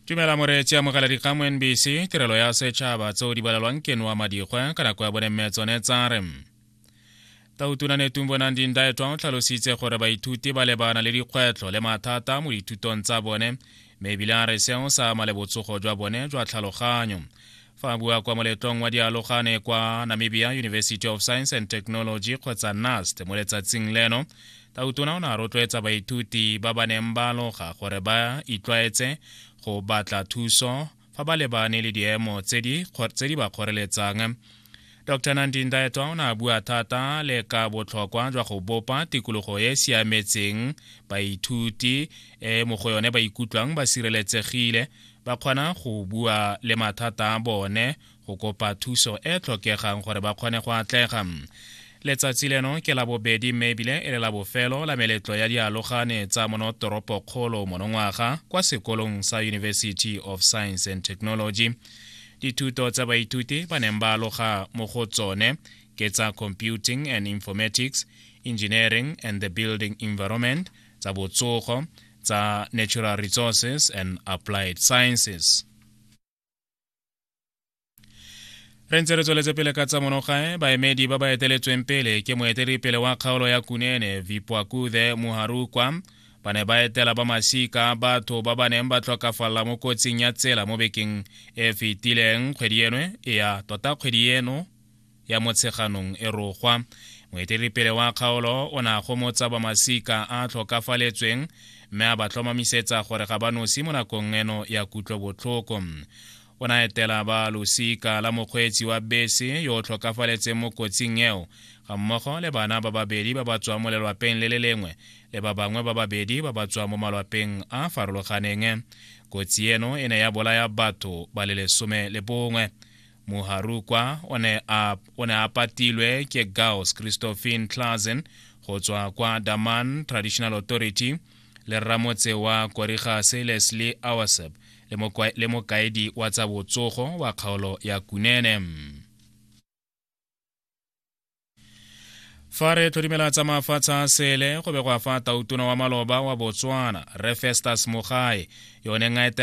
tumela moreetsi amogela dikgang mo nbc tirelo ya setšhaba tseo di balelwang ke noa madikgwe ka nako ya bone mme tsone tsa re tautuna netung bonang dindaetwa o tlhalositse gore baithuti ba lebana le dikgwetlho le mathata mo dithutong tsa bone mme ebile a re seo sa ama le botsogo jwa bone jwa tlhaloganyo fa bua kwa moletong wa dialogane kwa namibia university of science and technology kgotsa nast mo letsatsing leno tautona o ne a rotloetsa baithuti ba ba neng ba aloga gore ba itlwaetse go batla thuso fa ba lebane le diemo tse di ba kgoreletsang Dr Nandi Ndaetwa o ne a bua thata le ka botlhokwa jwa go bopa tikologo e e siametseng baithuti e mo go yone ba ikutlwang ba sireletsegile ba kgona go bua le mathata a bone go kopa thuso e tlhokegang gore ba kgone go atlega letsatsi leno ke la bobedi mme ebile e le la bofelo la meletlo ya dialogane tsa monotoropokgolo monongwaga kwa sekolong sa university of science and technology Dithuto tsa baithuti ba neng ba aloga mo go tsone ke tsa Computing and Informatics, Engineering and the Building Environment, tsa botsogo, tsa Natural Resources and Applied Sciences. re ntse re tsweletse pele ka tsa monogae baemedi ba ba eteletsweng pele ke moeteledipele wa kgaolo ya kunene vipwakuthe muharukwa ba ne ba etela ba masika batho ba ba neng ba tlhokafalela mo kotsing ya tsela mo bekeng e fetileng kgwedi enwe e ya tota kgwedi eno ya motsheganong e rogwa moeteledipele wa kgaolo o ne a gomotsa ba masika a tlhokafaletsweng mme a ba tlhomamisetsa gore ga ba nosi mo nakong eno ya kutlobotlhoko o na etela ba losika la mokgweetsi wa bese yo o tlhokafaletseng mo kotsing eo ga mmogo le bana ba babedi ba ba tswang mo lelwapeng le le lengwe le ba bangwe ba babedi ba ba tswang mo malwapeng a a farologaneng kotsi eno e ne ya bolaya batho ba le lesome le bongwe moharukwa o ne a o ne a patilwe ke gauss christophine clasen go tswa kwa daman traditional authority le ramotse wa korigase leslie awasep le mokaedi wa tsa botsogo wa kgaolo ya kunene fa re tlhodimela tsa mafatshe a sele go begwa fa tautona wa maloba wa botswana refestus mogae yone nga etela